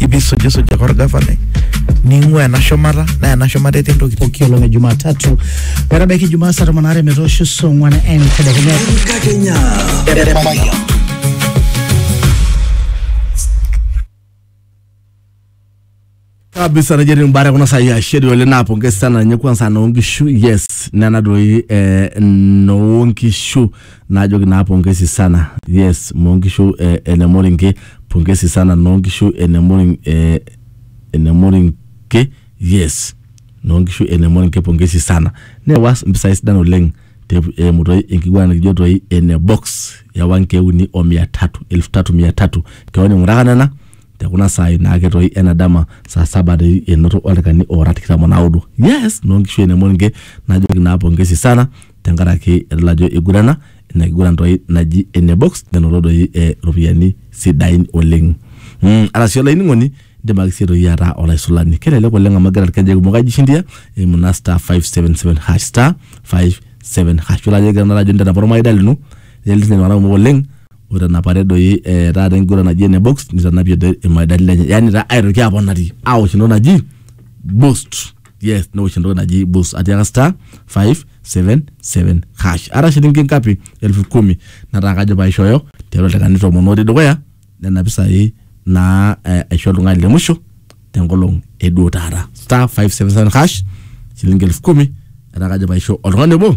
ibisujisuj ake orgavanai ning'ua ena shumata naa ena shumata etii ntokitin pooki olong e Jumatatu metabaiki Ijumaa saa tomon aare metoosho saa ong'wan entedekenya. Enkakenya. kabisa najua ni mbara kuna saa ya sheri wale napongeza sana nye kwanza naongishu yes nana doi eh, naongishu Naajoki naa pongesi sana yes noo nkishu e ene Moringe pongesi sana noo nkishu ene Moring e ene Moringe yes noo nkishu ene Moringe pongesi sana neewa mpisai sidan oleng te eimu toi enkiguana nikijo toi ene box ewa nkeek uni o mia tatu elfu tatu mia tatu keon ing'uraka nena te kuna saai naake toi ena dama saa saba doi enoto oldaikani oora tikitam o naudo yes noo nkishu ene Moringe najoki naa pongesi sana tenkaraki edol ajo igurana ina kiguran toi naji ene box nenoto doi eh, ropiyiani sidain oleng mm, arashu olainining'oni indim ake sii toi ataa olaisulani kelelek oleng amu egira irkejek kumok aijishindia eimu naa star 577 hash star 57 hash ore ajo egira naa ajo intanapa ormaida lino netii iltung'anak kumok oleng oitanapate doi eh, taata enkiguran naji ene box nitanapie doi irmaidani lenye yani taa aitoki aponari awosh entoki naji boost yes newosh entoki naji bus atiaka star 577 hash ara shilingi ngapi elfu kumi nataa kajo paishooyo tiatua ildaikani tomon otii dukuya nena pisai naa eh, aisho oltung'ani le musho tenkolong eduo taata star 577 hash shilingi elfu kumi etaa kajo paisho oltung'ani obo